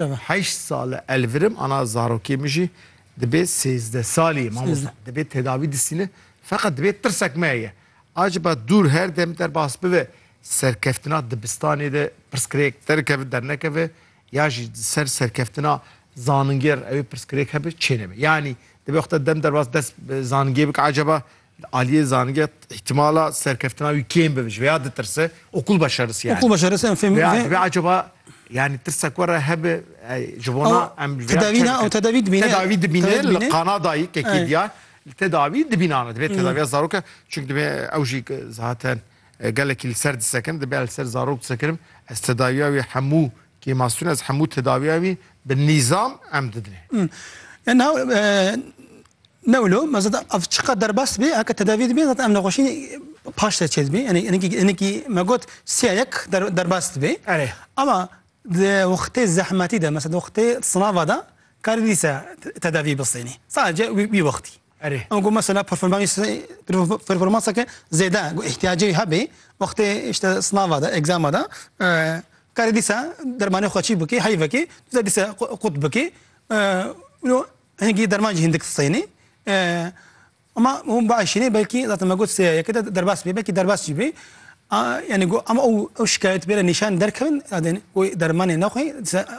Heşt sal e elvirim ana zarokê min jî dibê sêzdeh salî ye mamosta. Dibê tedavî distîne feqet dibê tirsek me heye. Aciba dûr her dem derbas bibe serkeftina dibistanê de pirsgirêk derikeve dernekeve ya jî di ser serkeftina zaningê re ew ê pirsgirêk hebe çê nebe. Yanî dibê xwe te dem derbas dest bi zaningê bike aciba Li aliyê zanîngeh îhtimala serkeftina wî kêm bibe ji vê ya ditirse okul başeris yani. Okul başeris em fêm vê vê acaba yani tirsek were hebe ji bona em tedavî ne ew tedavî dibîne tedavî dibîne li Qanadayî kekê diya li tedavî dibînane divê tedaviya zaroka çunk divê ew jî zaten gelekî li ser disekin dibe li ser zarok disekirim ez tedaviya wî hemû kêmasûn ez hemû tedaviya wî bi nîzam em didinê. Ne wilo me zat ev çiqet derbas dibe heke tedavî dibe zat ev nexweşî paş te çê dibe yani enekî enekî me got siya yek derbas dibe ama di wextê zehmetî de mesela di wextê sinava de karî dîsa tedavî bistênî sadece wî wextî em got mesela performanseke zêde got îhtiyacê hebê wextê işte sinava de egzama de karî dîsa dermanê xwe çî bikî heyvekê dîsa qut bikî Hingî derman jî hindik sênê. Ama hûn biaşînê belkî zaten me got sêya yeke de derbas bê belkî derbas jî bê. Yani got ama ew ew şikayet bêre nîşan derkevin adên got dermanê nexwî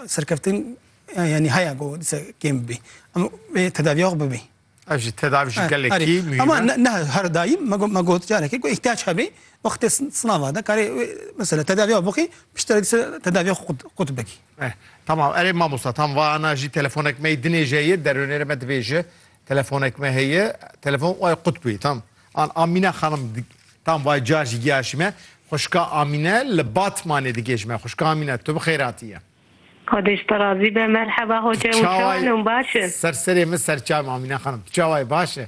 serkeftin yani haya got dise kêm bibî. Ama vê tedaviya xwe bibî. Ev jî tedavi jî gelekî muhîm. Ama ne her daîm me got me got carekê got îhtiyac hebê wextê sinava de karê mesela tedaviya bixî piştre dise tedaviya xwe qut bikî. Eh tamam erê mamosta tam va ana jî telefonek me dinê jê ye derunê re me dibêje telefonek me heye telefon ay qutbî tam an Amîne xanim tam vay ca jî giya jî me xuşka Amîne li Batmanê digê ji me xuşka Amîne tu bi xêr hatiye Xwedêş te razî be merheba hoce û çawa ne baş e? Ser serê min serçayê min Amîne xanim tu çawa yî baş e?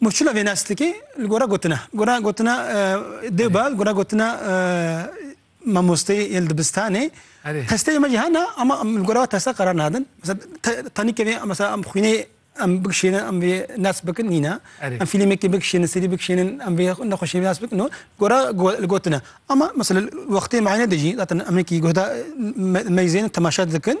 Murçula vê neslikê li gora gotina, li gora gotina dê ba, li gora gotina mamosteyê yên li dibistanê testeyê me jî hene ama em li gora we testa qerar nadin. Tanî kevê mesela em xwînê em bikişênin em vê nes bikin nîne. Em fîlmekê bikişênin, serî bikişênin em vê nexweşiyê nas bikin û gora li gotina. Ama mesela li wextê meyane de jî zaten em hinekî guhda meyzên temaşe dikin.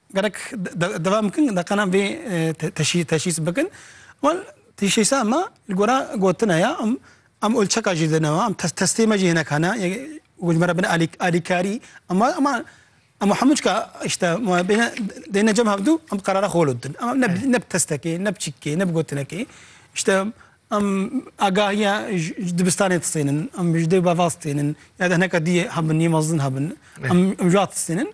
Gerek devam bikin deqanan vê teşhîs bikin. Wan teşhîsa me li gora gotina ya em em olçeka jî dine em testê me jî hinek hene ku ji me re bin alîkarî em em em hemû çika îşte dêne cem hevdû em bi qerara xwe didin. Em ne bi testekê ne bi çîkekê ne bi gotinekê îşte em agahiya ji dibistanê distênin em ji dê û bavaz distênin ya de hineka dî hebin yê mezin hebin em ji wan distênin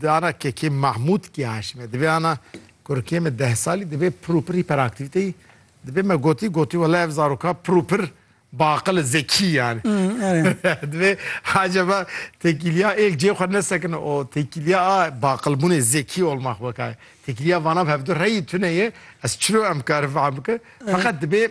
Di ana kekê Mahmûd kê Haşimê divê ana kurikê me deh salî divê pir û pir hîperaktîvîteyî dibê me gotî gotî wele ev zaroka pir û pir biaqil e zekî yanî divê acaba têkîlîya êk cê xwe nesekine û têkîlîya a biaqilbûnê zekî olma xwe weka ye. Têkîlîya vana bi hevdu reyî tune ye ez çiro em kari feham bikim feqet dibê